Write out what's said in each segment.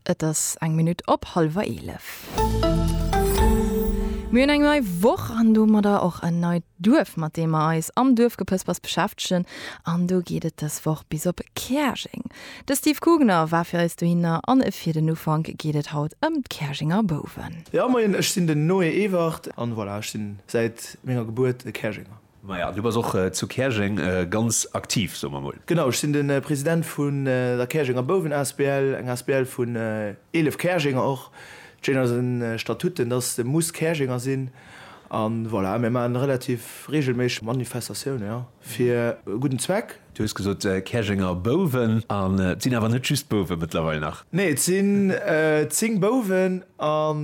Et ass eng Minutt op hallwer eelef. Mir hunn eng nei Woch an domadder och en neit Duerf, mat deem mer eis am Duerfgepëspers beschäftegen. An do geet et dës Woch bis op Käerjeng. De Steve Kugner war fir eis dohinner an fir den Ufank geet et haut ëm d'Käerjenger Bouwen. Jo moien, ech sinn den Noé Ewert. An voilà, ech sinn säit menger Gebuert e Käerjenger. Maja, du bass och zu Käerjeng ganz aktiv, soe mer mol. Genau, ech sinn de President vun der Käerjenger Bouwen asbl, eng asbl vun 11 Käerjenger och. D'Schéin an eisen Statuten, dass de muss Käerjenger sinn. A voilà, mir maachen relativ reegelméisseg Manifestatiounen, jo, fir e gudden Zweck. Du hues gesot Käerjenger Bouwen, an et sinn awer net just Bouwe mëttlerweil nach? Nee, et sinn 10 Bouwen an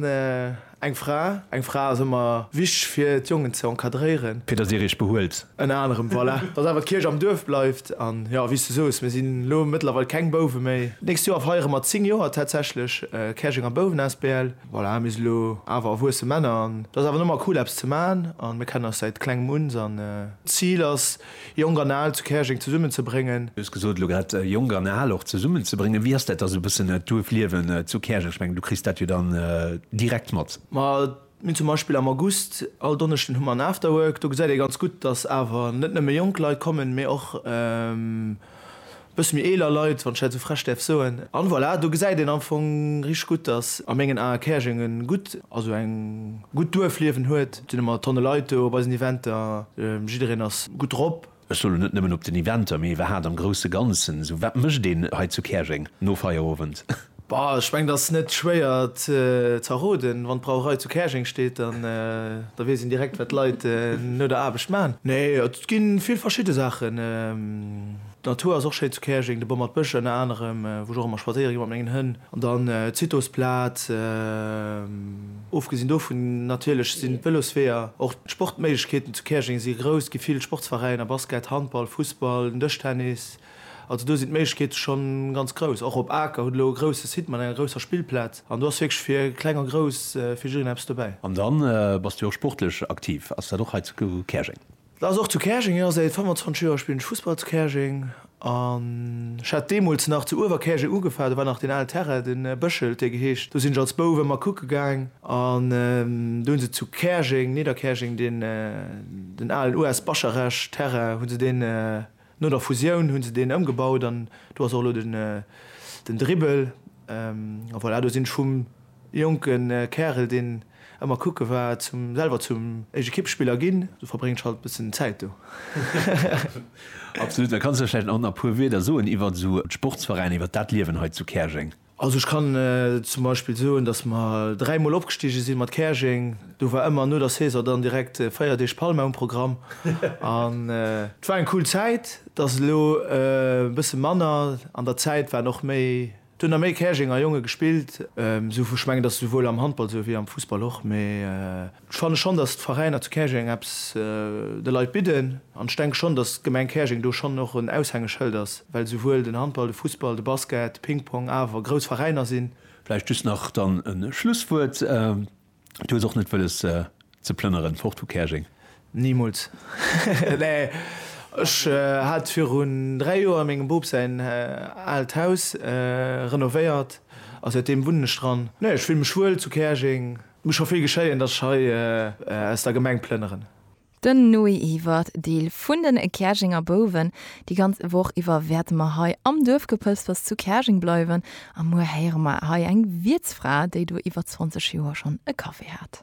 Eng Fra, eng Fra ass ëmmer wichteg fir d'Jongen ze encadréieren. Fir dass dir iech behuelt. Ënner anerem, voilà. Dass awer d'Kierch am Duerf bleift. An jo, wéi s du soos, mir sinn elo mëttlerweil keng Bouwe méi. D'nächst Joer feiere mer 10 Joer tatsächlech Käerjenger Bouwen asbl. Voilà, mir si elo awer erwuesse Männer an dass awer ëmmer cool eppes ze maachen a mir kennen eis säit klengem un. An d'Zil ass, Jonk an Al zu Käerjeng zesummen ze bréngen. Du hues gesot elo grad, Jonk an Al och zesummen ze bréngen. Wéi ass dat da sou e bëssen d'Duerfliewen zu Käerjeng? Ech mengen, du kriss dat jo dann direkt mat. Ma mir hunn zum Beispill am August, all Donneschden hu mer en Afterwork. Do gesäit ee ganz gutt, datt awer net nëmme jonk Leit kommen, mee och. Bësse méi eeler Leit, wann ech dat esou frech däerf soen. An voilà, do gesäit een am Fong richteg gutt, dass a mengen Ae Käerjeng e gutt, also eng gutt Duerfliewen huet. Et sinn ëmmer Tonne Leit do op eisen Eventer, jiddereen ass gutt drop. Ech soe lo net nëmmen op den Eventer, mee iwwerhat am grousse Ganzen esou, wat mécht een hei zu Käerjeng no Feierowend? Bah, ech mengen ass net schwéier z'erroden. Wann d'Brauerei zu Käerjeng steet, dann da weess een direkt wat d'Leit no der Aarbecht man. Nee, et gi vill verschidde Saachen. D'Natur ass och schéin zu Käerjeng, de Bommert Bësch ënner anerem, wou ech och ëmmer spadséiere gi mat mengen Hënn. An dann d'Zitosplaz. Ofgesinn dovun natierlech sinn d'Vëlosweeër, och d'Sportméiglechkeeten zu Käerjeng si grouss. Gi vill Sportsveräiner, Basket, Handball, Fussball, den Dëschtennis. Also do sinn d'Méiglechkeete scho ganz grouss. Och op Aker hutt elo e grousse Site mat enger grousser Spillplaz an do ass wierklech fir Kleng a Grouss fir jiddereen eppes dobäi. An dann bass du jo och sportlech aktiv. Ass dat och hei zu Käerjeng? Dat ass och zu Käerjeng, jo. Säit 25 Joer spillen ech Fussball zu Käerjeng an ech hat deemools nach zu Uewerkäerjeng ugefa. Do war nach deen alen Terrain, de Bëschel huet dee geheescht. Do sinn ech als Bouf ëmmer kucke gaang an do hu se zu Käerjeng, Nidderkäerjeng, deen, den alen US. Bascharech-Terrain, hu se deen, No der Fusioun hunn se deen ëmgebaut an do ass och elo den den Dribbel. A voilà, do sinn ech vum jonke Kärel, deen ëmmer kucke war, zum selwer zum Ekippspiller ginn. Du verbréngs halt bëssen Zäit do. Absolut. Da kanns du vläicht nach a puer Wieder soen iwwert esou d'Sportsveräiner, iwwert dat Liewen hei zu Käerjeng. Also ech kann zum Beispill soen, datt mer dräi Mol opgestige si mat Käerjeng. Do war ëmmer no der Saison dann direkt véier Deeg Palma um Programm. An et war eng cool Zäit. Et ass elo e bësse manner. An der Zäit waren och méi, et hunn der méi Käerjenger Jonge gespillt. Ech mengen, et ass esouwuel am Handball esou wéi am Fussball och. Mee Ech fanne schonn, datt d'Veräiner zu Käerjeng eppes de Leit bidden. An ech denke schonn, datt d'Gemeng Käerjeng do schonn och en Aushängeschëld ass, well souwuel den Handball, de Fussball, de Basket, de Pingpong awer grouss Veräiner sinn. Vläicht just nach dann e Schlusswuert, Du hues och net wëlles ze plënneren fort vu Käerjeng? Nimools! Nee, ech hat virun dräi Joer mengem Boob säin aalt Haus renovéiert a säitdeem wunnen ech dran. Nee, ech fille mech wuel zu Käerjeng. Muss scho vill geschéien, dass ech hei aus der Gemeng plënneren. Den Noé Iwert, Deel vun den Käerjenger Bouwen. Déi ganz Woch iwwer wäerte mer hei am Duerfgepëspers zu Käerjeng bleiwen a muer héiere mer hei eng Wiertsfra, déi do iwwer 20 Joer schonn e Café hat.